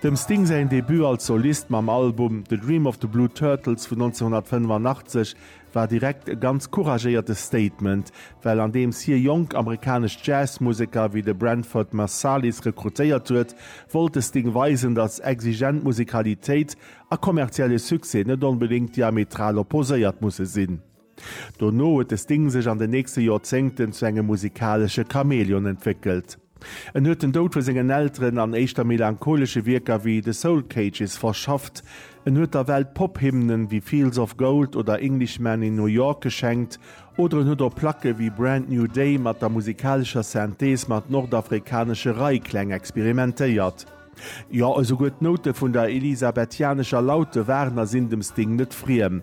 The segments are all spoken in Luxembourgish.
Dem Sting säin Debut als Solist mam Album The Dream of the Blue Turtles vun 1985 war direkt e ganz couragéierte Statement, well andeems hie jonk amerikanesch Jazzmuseker wéi de Branford Marsalis rekrutéiert huet, wollt de Sting weisen, datt exigent Musikalitéit a kommerzielle Succès net onbedéngt diametral opposéiert musse sinn. Dono huet de Sting sech an den nächste Joerzéngten zu engem musikalesche Chamäleon entwéckelt. En huet den Doud vu sengen Elteren an éischter melancholesche Wierker wéi The Soul Cages verschafft. En huet der Welt Pop-Hymnen wéi Fields of Gold oder Englishman in New York geschenkt oder en huet op Placke wéi Brand New Day mat der musikalescher Synthese mat nordafrikanesche Reikläng experimentéiert. Jo, esouguer d'Noute vun der elisabethianescher Laute waren a sinn dem Sting net friem.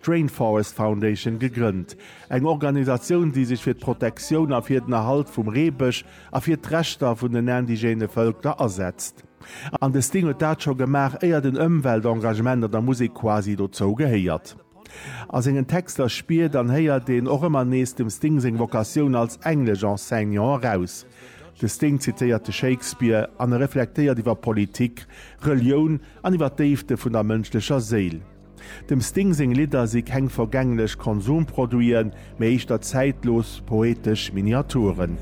d'Rainforest Foundation gegrënnt, eng Organisatioun, déi sech fir d'Protektioun a fir den Erhalt vum Reebësch a fir d'Rechter vun den indigene Vëlker asetzt. An de Sting huet dat scho gemaach, éier den Ëmweltengagement an der Musek quasi dozou gehéiert. A sengen Texter spiert an héiert een och ëmmer nees dem Sting seng Vocatioun als Englesch-Enseignant eraus. De Sting zitéiert de Shakespeare an e reflektéiert iwwer Politik, Relioun an iwwer d'Déifte vun der mënschlecher Séil. Dem Sting seng Lidder si keng vergänglech Konsumproduiten, mee éischter zäitlos poetesch Miniaturen.